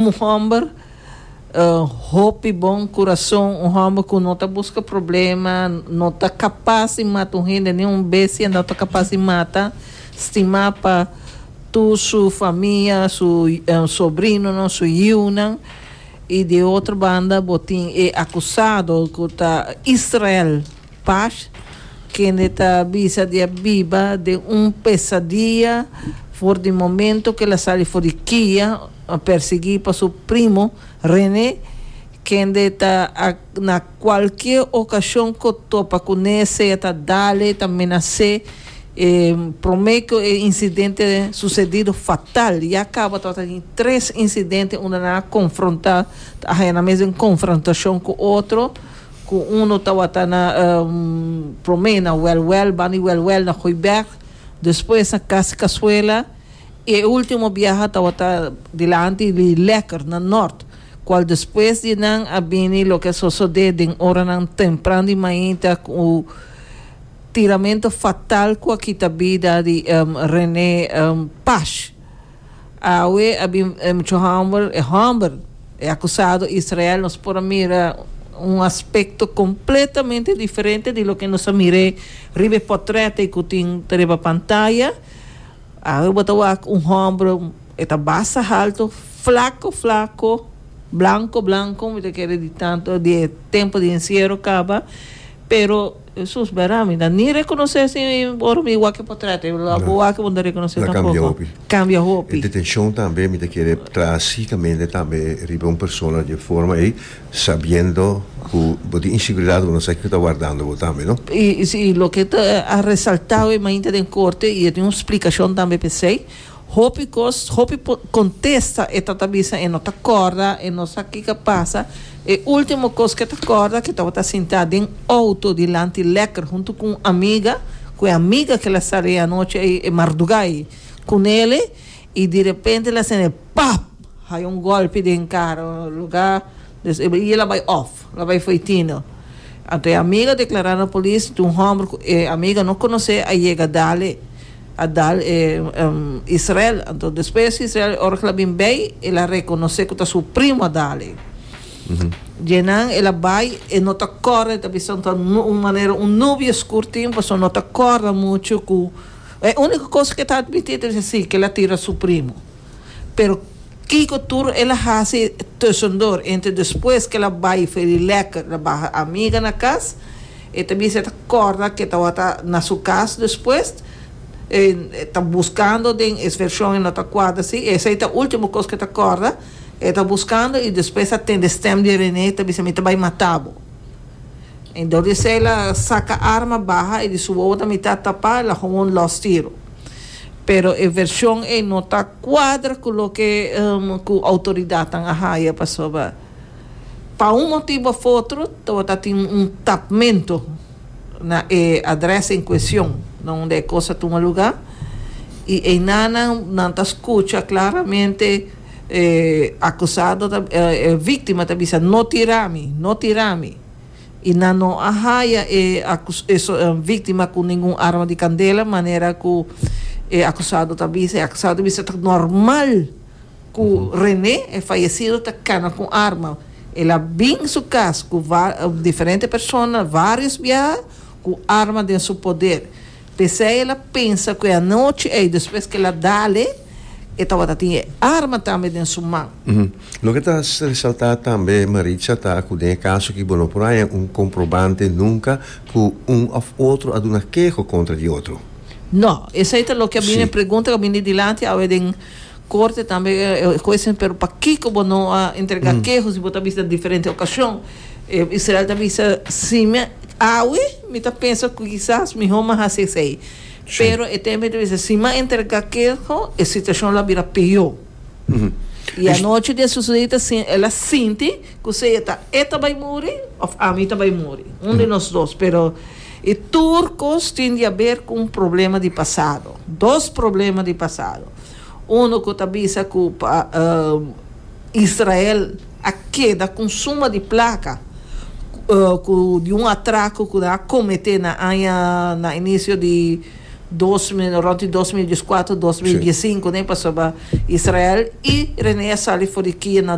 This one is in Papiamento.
Un homber hopi bon curason, un homber cu no ta busca problema, no ta capaz di mata un hende, ni un bestia no ta capaz di mata, stima pa tur su famia, su sobrinonan, su yiunan, y di otro banda bo tin e acusado cu ta Israel. Pash, kende ta bisa di a biba den un pesadiya for di momento ku el a sali for di kia, persiguí pa su primo René, kende ta na kualke okashon ku topa kuné sea ta dale, ta menas'é. E promé ku e insidente susedido fatal, ya kaba tabata tin tres insidente unda nan a konfrontá, ta haña nan mes den konfrontashon ku otro. Ku uno tawata na promé na wèlwèl, ban di wèlwèl na Goeibèrg, despues na Kas Kasuela, i e último biaha tawata dilanti di Lèkker na nòrt, kual despues di nan a bini loke a sosodé den oranan tempran di mainta ku tiramentu fatal ku a kita bida di René Pash. Awe a bin e muchu hòmber, e hòmber, e akusado Israel, nos por a mira un aspekto kompletamente diferente di loke nos a mir'é riba e pòtrèt'e ku tin ta riba pantaya. Awe bo ta wak un hòmber, e ta basta haltu, flako flako, blanko blanko, mi ta kere di tantu di e tempu di enciero kaba, pero. Jesús, bera mi ta ni rekonosé si ora mi wak e potrèt, e lo bo wak e bo no ta rekonosé tampoko. Kambia hopi. E detenshon tambe mi ta kere traha sikamente tambe riba un persona di e forma ei, sabiendo ku bo tin inseguridat, bo no sa kiko ta wardando bo tambe, no? I loke ta resaltá oe mainta den korte, i e tin un splikashon tambe p'esei, Hopi cos, hopi contesta e tata bisa e no ta corda, e no sa kica pasa. E ultimo cos ke ta corda ke tabata sinta den auto dilanti lekker hunto cu un amiga, cu e amiga ke la sali e anochi ay, e marduga ay cu nele y direpente la sene pap haya un golpe den caro loga des e bia la bay off, la bay fo'i tino. Anto e amiga declara na polis, tin un homber cu e amiga no conoce a yega dale. a dal e Israel. Anto despues e Israel, ora ku el a bin bei, el a rekonosé ku ta su primu a dal ei. Djenan el a bai, e no ta kòrda, e ta bisa un ta un manera un nubi oskur tin, pasobra no ta kòrda muchu ku e úniko kos ku e ta admití ta bisa si, ku el a tira su primu. Pero kiko tur el a hasi tusendor entre despues ke el a bai for di lekker na baha amiga na kas e ta bisa e ta korda ke tawata na su kas despues e ta buskando den e vershon e no ta kuadra si esei ta ultimo kos ke ta korda e ta buskando i despues a tende stem di Rene ta bisa mi ta bai mata bo i dor di esei el a saka arma baha i di su wowo na mitat tapa el a hon un los tiro. pero e version ei no ta cuadra cu loke cu autoridadnan a haya pasobra pa un motibo of otro tabata tin un tapmento na e adres en cuestion donde e cos a tuma lugar y eyna nan nan ta scucha claramente e acusado ta e victima ta bisa no tirami no tirami. I nan no a haya e víktima ku ningun arma di kandela, manera ku e akusado ta bisa. E akusado bisa ta normal ku René, e fayesido, ta kana ku un arma. El a bin su kas ku diferente persona vários biaha ku arma den su poder. P'esei el a pensa ku e anochi ei, despues ku el a dale, e tabata tin e arma tambe den su man. Loke ta resaltá tambe, Maritza, ta ku den e kaso aki bo no por haña un komprobante nunka ku un òf otro a duna keho kontra di otro. No. Esei ta loke a bini, e pregunta ku a bini dilanti awe den korte tambe, e huesnan, pero pakiko bo no a entregá keho si bo ta bista diferente okashon? E Israel ta bisa, Si mi awe, mi ta pensa ku kisas mihó mi a hasi esei. Pero e tembe ta bisa, si mi a entregá keho, e situashon lo a bira peó. I anochi di e susede i ta sinti, el a sinti ku sea ta e ta bai muri òf ami ta bai muri. Un di nos dos. Pero e tur kos tin di haber ku un problema di pasado. Dos problema di pasado. Unu ku ta bisa ku pa Israel a keda ku un suma di plaka ku di un atraku ku nan a kometé na aña na inisio di dos mil rònt di dos mil dieskuater dos mil diessinko nè pasobra Israel i Reneia sali for di kia.